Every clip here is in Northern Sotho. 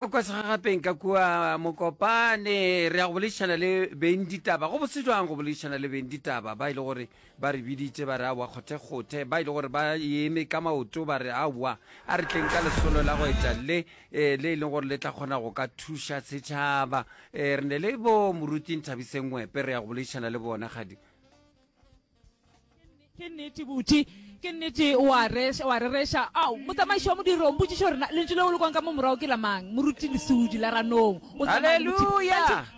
Kwa segagapeng ka kua Mokopane re ya go boledišana le beng ditaba. Go bose jwang go boledišana le beng ditaba ba ile e gore ba re biditse ba re aowa kgothekgothe, ba ile e gore ba eme ka maoto ba re aowa a re tleng ka lesolo la go etša le eh, le e leng gore le tla kgona go ka thuša setšhaba. Eh, re ne le bo moruti Nthabiseng Ngwepe re ya go boledišana le bona kgadi. ke nnete buti ke nnete wa rereša ao motsamaiši wa modiro mpotsiša gore lentšu leo le kwang ka mo morago ke lamang moruti lesudi la ranong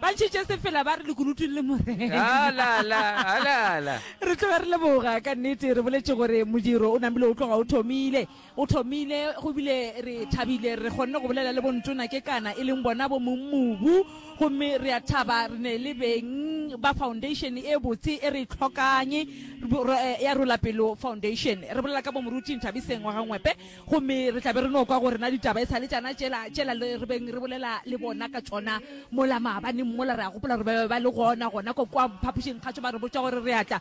bantši tše sefela ba re lekunutu le morela re tloga re leboga ka nnete re boletse gore modiro o namile o tloga o thomile O thomile go bile re thabile re kgonne go bolela le Bontona Kekana e leng bona bo mong mobu gomme re a thaba re ne le beng ba foundation e botse e re e tlhokanye ya Rolapelo Foundation. Re bolela ka bo Moruti Nthabiseng wa ga Ngwepe gomme re tla be re no kwa go rena ditaba e sa le tšana tšela tšela le re beng re bolela le bona ka tšona mola maabaneng mola. Re a gopola gore ba be ba le gona gona ko kwa phapošing kgatsho ba re botša gore re a tla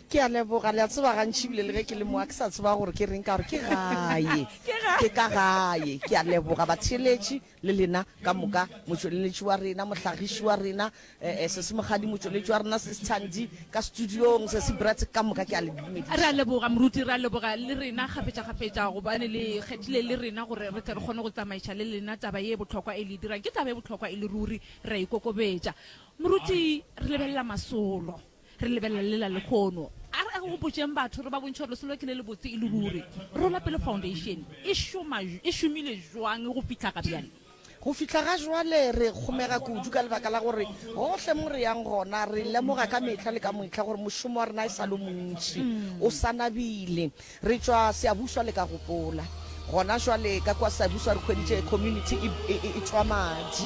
Ke a leboga. Le a tseba, gantši ebile le ge ke le mo a ke sa tseba gore ke reng, ka gore ke gae. Ke ka gae. Ke a leboga, batheeletši, le lena ka moka, motšweleletši wa rena, mohlagiši wa rena, eh, Sesi Mokgadi, motšweletši wa rena, Sis Thandi, ka studiong, Sesi Brett, ka moka ke a le dumediša. Re a leboga, Moruti. Re a leboga le rena kgafetšakgafetša gobane le kgethile le rena gore re tle re kgone go tsamaiša le lena taba ye bohlokwa e le e dirang. Ke taba e bohlokwa e le ruri. Re a e kokobetša. Moruti, re lebelela masolo. Re lebelela le la lekgono. A re gopotšeng batho re ba bontšhe gore lesolo ke le lebotse e le ruri. Rola Pele Foundation e šoma, e šomile jwang go fihla ga bjale? Go fihla ga jwale re kgomega kudu ka lebaka la gore gohle mo re yang gona re lemoga ka mehla le ka mohla gore mošomo wa rena e sa le o montši, o sa nabile. Re tšwa Seabuswa le ka gopola. Gona jwale ka kwa Seabuswa re hweditše community e, e, e, e tšwa madi.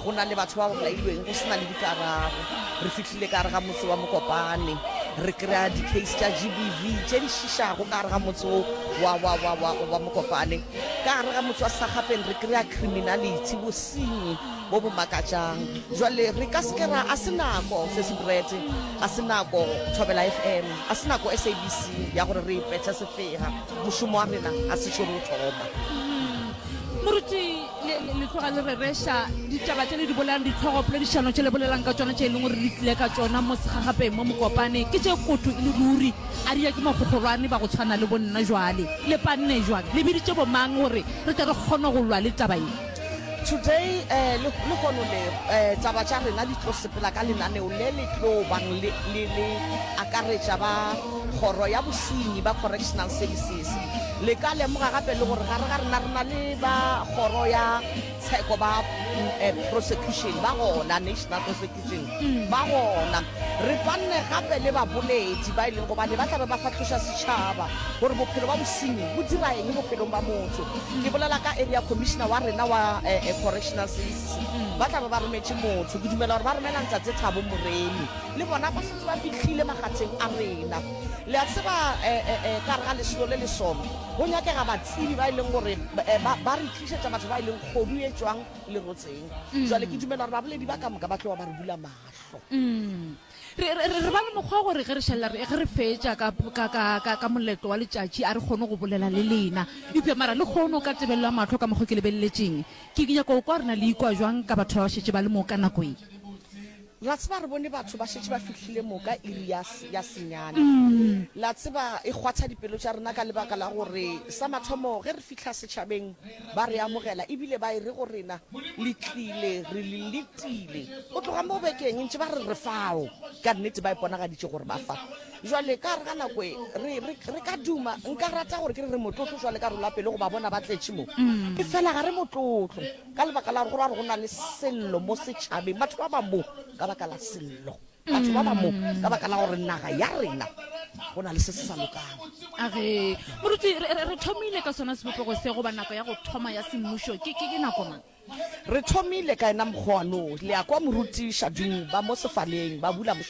Go na le batho ba ba bolailweng go sena le dikarabo. Re fihlile ka gare ga motse wa Mokopane. Re kry-a di-case tša GBV tše di šišago ka gare ga motse wo wa, wa, wa, wa, wa Mokopane. Ka gare ga motse wa Sagapeng re kry-a criminality, bosenyi. bo bo makatšang. Jwale re ka se ke ra, a se nako, Sesi Brett, a se nako, Thobela FM, a se nako, SABC, ya gore re ipetše sefega. Mošomo wa rena ga se šo re o thoma. Moruti, le, le, le tloga le rereša ditaba tše le di bolelang, ditlhogo poledišano tše le bolelang ka tšona, tše e leng gore le tlile ka tšona mo segagapeng mo Mokopane, ke tše koto e le ruri. A ria ke magogolwane ba go tshwana le bo nna jwale. Le panne jwang? Le biditše bo mang gore re tle re kgone go lwa le taba ye? Today eh, le le gono le eh, taba tša rena di tlo sepela ka lenaneo le le tlo bang le le le akaretša ba kgoro ya bosenyi ba correctional services le ka lemoga gape le gore gare ga rena re na le ba kgoro ya tsheko ba mm, eh, prosecution ba gona national prosecution ba gona re panne gape le baboledi ba e leng gobane ba tlabe ba fatlhoša setšhaba gore bophelo ba bosenyi bo dira eng bophelong ba motho ke bolela ka area commissioner wa rena wa eh, eh, correctional services ba tlabe ba rometše motho ke dumela gore ba romela ntsatse thabo moremi le bona ba setse ba fitlhile magatsheng a rena le a tseba eh, eh, eh, ka re ga lesolo le le sona go nyakega batsebi ba e leng gore eh, ba ba re tlišetša batho ba e leng kgodu e tswang le rotseng mm. jwale ke dumela gore baboledi ba ka moka ba tloa ba re bula mahlo mm. re ba le mokgwa gore ge re šalela ge re fetša ka moletlo wa letšatši a re kgone go bolela le lena eupša mara le kgone o ka tebelelwa mahlo ka mokgwa ke lebeleletseng ke nyako kwa rena le ikwa jwang ka batho ba ba šetse ba le mo ka nako e La tseba, re bone batho ba šetše ba fihlile mo ka iri ya, ya senyane. La tseba, e kgwatha dipelo tša rena ka lebaka la gore, sa mathomo, ge re fihla setšhabeng, ba re amogela, e bile ba e re go rena, Le tlile, re le letile. Go tloga mo bekeng e ntše ba re re fao. Ka nnete, ba iponagaditše gore ba fa. Bjale, ka gare ga nako e, re, re, re ka duma, nka rata gore ke re re motlotlo, bjale ka re loa pelo go ba bona ba tletše mo. Efela ga re motlotlo. Ka lebaka la go ra go na le sello mo setšhabeng, batho ba ba mo ka baka la sello, batho ba ba mo ka baka la gore naga ya rena go na le se se sa lokang. Age, moruti, re, re, re thomile ka sona sebopego se goba nako ya go thoma ya semmušo ke, ke, ke nako mang? Re thomile ka yena mokgwa wa noo. Le a kwa, moruti Shadung, ba mo sefaleng, ba bula mošomo.